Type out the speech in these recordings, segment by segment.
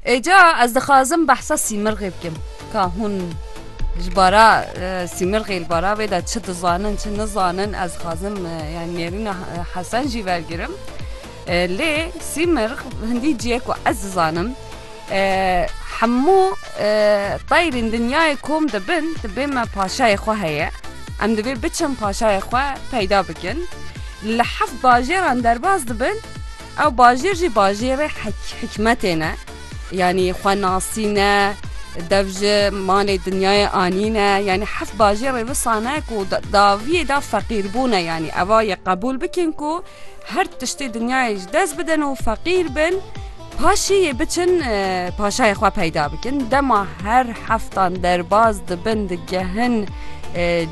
Êca ez dixwazim behsa sîmirgê bikim ka hûn ji bara sîmirgê li bara wê de çi dizanin çi nizanin ez dixwazim yani nêrîna hesen jî wergirim lê sîmirg hindî ciyê ku ez dizanim hemû teyrên dinyayê kom dibin dibê me paşayê xwe heye em divê biçin paşayê xwe peyda bikin li heft bajêran derbas dibin. Ew bajêr jî bajêrê hikmetê ne. Yanî xwe nasîne, dev ji malê dinyayê anîne. Yanî heft bajêrê wisa ne ku daviyê da feqîrbûne yanî eva yê qebûl bikin ku her tiştê dinyayê ji dest bidin û feqîr bin paşî yê biçin paşayê xwe peyda bikin. Dema her heftan derbaz dibin digehin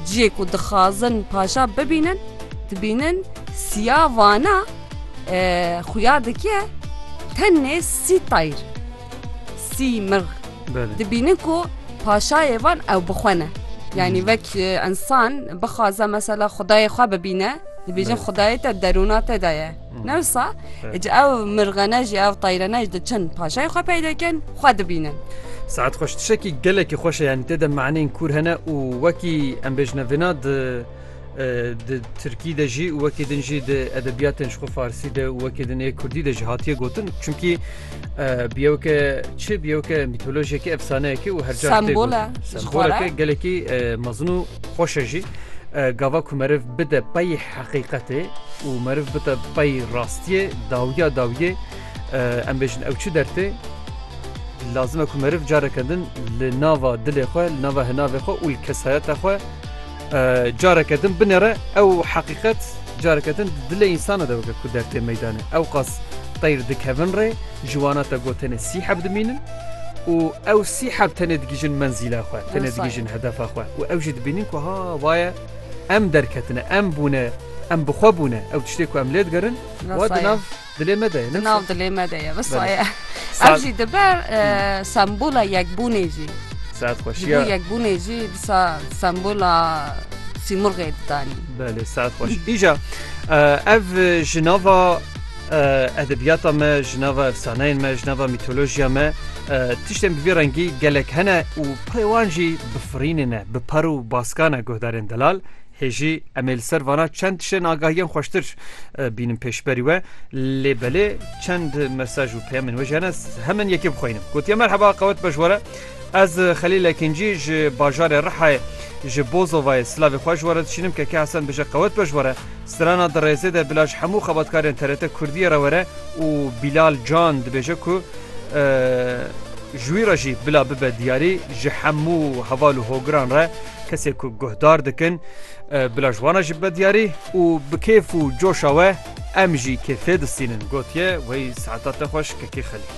ciyê ku dixwazin paşa bibînin dibînin siya vana. Xuya dike tenê sî tayr sî mirg dibînin ku paşayê van ew bixwene. Yani vek insan bixwaze mesela xudayê xwe bibîne dibêjin xudayê te derûna te de ye. Newsa ji ew mirgene jî ew tayrene ji diçin paşayê xwe peyde kin xwe dibînin. Saet xweş tişekî gelekî xweş e yanî tê de maneyên kûr hene û wekî em bêjine vêna di Di Tirkî de jî û wekî din jî di edebiyatên ji xwe Farsî de û wekî din ê Kurdî de jî hatiye gotin çimkî biyewke çi biyewke mîtolojiyekî efsaneyekî û herca semboleke gelekî mezin û xweş e jî. Gava ku meriv bide pey heqîqetê û meriv bide pey rastiyê dawiya dawiyê em bêjin ew çi dertê lazime ku meriv careke din li nava dilê xwe li nava hinavê xwe û li kesayeta xwe Careke din binêre ew heqîqet careke din di dilê însanan de weke ku der tê meydanê ewqas teyr dikevin rê ji wana te got tenê sî heb dimînin û ew sî heb tenê digihîjin menzîla xwe tenê digihîjin hedefa xwe û ew jî dibînin ku ha vaye em derketine em bûne em bi xwe bûne ew tiştê ku em lê digerin wa di nav Dilê me de ye. Di nav dilê me de ye. Wisa ye. Ev jî dibe sembola yekbûnê jî. Saet xweş. Ji bo yekbûnê jî disa sembola sîmurgê didanî. Belê saet xweş. Îja ev ji nava edebiyata me ji nava efsaneyên me ji nava mîtolojiya me tiştên bi vî rengî gelek hene û pirê wan jî bifirînê ne bi par û baskane guhdarên delal Hê jî em ê li ser vana çend tiştên agahiyên xweştir bînin pêşberî we lê belê çend mesaj û peyamên wê jiyane hemin yekê bixwînim. Gotiye merheba qewet bejwere Ez Xelîl Ekincî ji bajarê Rihayê ji Bozovayê silavê xwe ji were dişînim keke Hesen bije qewet bejwere Strana dirêzê de bila ji hemû xebatkarên TRT Kurdiyê re were û Bilal Can dibêje ku ji wî re jî bila bibe diyarî ji hemû heval û hogiran re Kesê ku guhdar dikin bila ji wana jî bibe diyarî û bi kêf û coşa we em jî kêfê distînin, gotiye wê saeta te xweş Kekê Xelîl.